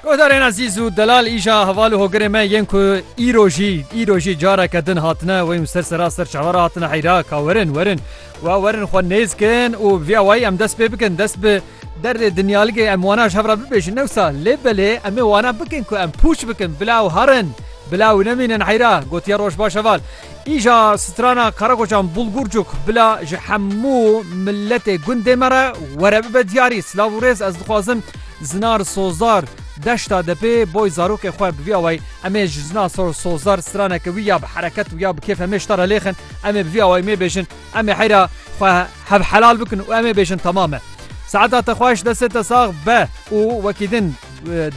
Guhdarên ezîz û delal îja heval û hogirê me yên ku îro jî îro jî careke din hatine wê û ser sera ser çawa re hatine heyra ka werin werin wa werin xwe nêz kin û vîya wayî em dest pê bikin dest bi derê dinyaligê em wana ji hev re bibêjin newsa lê belê em ê wana bikin ku em pûç bikin bila û herin bila û nemînin heyra gotiye roj baş heval Îja strana Karakoçan Bulgurcuk bila ji hemû miletê gundê me re were bibe diyarî. Silav û rêz ez dixwazim Zinar Sozdar deşta depê boy zarokê xwe bi vî awayî em ê ji Zinar Sozdar straneke wî ya bi hereket û ya bi kêfe me ji te re lêxin em ê bi vî awayî mê bêjin em ê heyra xwe hevhelal bikin û em ê bêjin temam e. Saeta te xweş destê te sax be û wekî din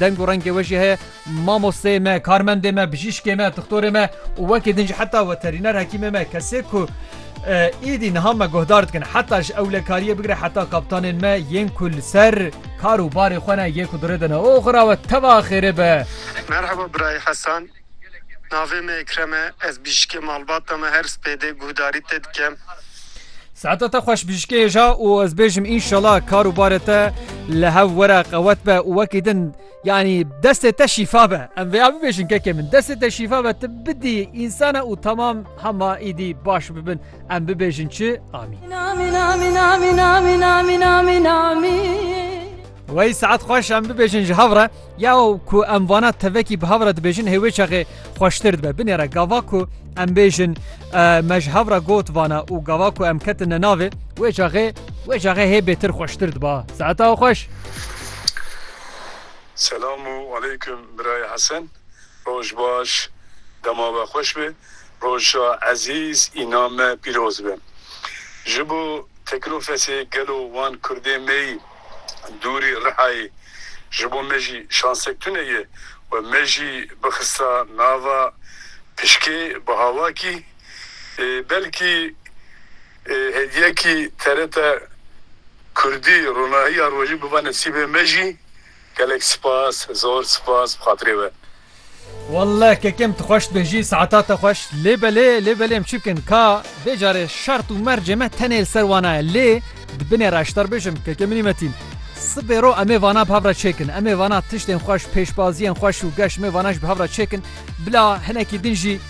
deng û rengê we jî heye. Mamosteyê me, karmendê me, bijîşkê me, dixtorê me û wekî din jî heta weterîner hekîmê me kesê ku êdî niha me guhdar dikin heta ji ewlekariyê bigire heta kaptanên me yên ku li ser kar û barê xwe ne yê ku di rê de ne. Oxira we teva xêrê be. Merhaba birayê Hesan. Navê me Ekrem e. Ez bijîşkê malbata me her spêdê guhdarî te dikem. Saeta te xweş bijîşkê hêja û ez bêjim înşela kar û barê te li hev were qewet be û wekî din Yanî destê te şîfa be em vêya bibêjin kekê min destê te şîfa be tu bidî însana û temam hema îdî baş bibin em bibêjin çi amîn Wey saet xweş em bibêjin ji hevre ya ku em vana tevekî bi hevre dibêjin hêwê çaxê xweştir dibe binêre gava ku em bêjin me ji hevra got vana û gava ku em ketin ne navê wê çaxê wê çaxê hê bêtir xweştir diba saeta xweş. Selamu aleykum birayê Hesen roj baş dema we xweş be roja ezîz îna me pîroz be ji bo teklofesê gelo wan kurdê meyî dûrî Rihayê ji bo me jî şansek tune ye we me jî bixista nava pişkê bi havakî belkî Hediyekî TRT Kurdî Ronahiya Rojî biba nesîbê me jî. Gelek spas, zor spas bi xatirê we. Walleh kekem tu xweş bêjî saeta te xweş lê belê lê belê em çibikin ka vê carê şert û mercê me tenê li ser wana ye lê di binê re ji te re bêjim keke minî Metîn sibê ro emê vana bi hev re çêkin emê vana tiştên xweş pêşbaziyên xweş û geş mê vana jî bi hev re çêkin Bila hinekî din jî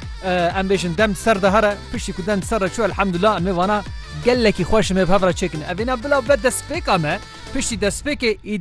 em bêjin dem ser de here piştî ku dem ser re çû elhamdullah em ê vana gelekî xweş me bi hev re çêkin. Evîna bila be destpêka me piştî destpêkê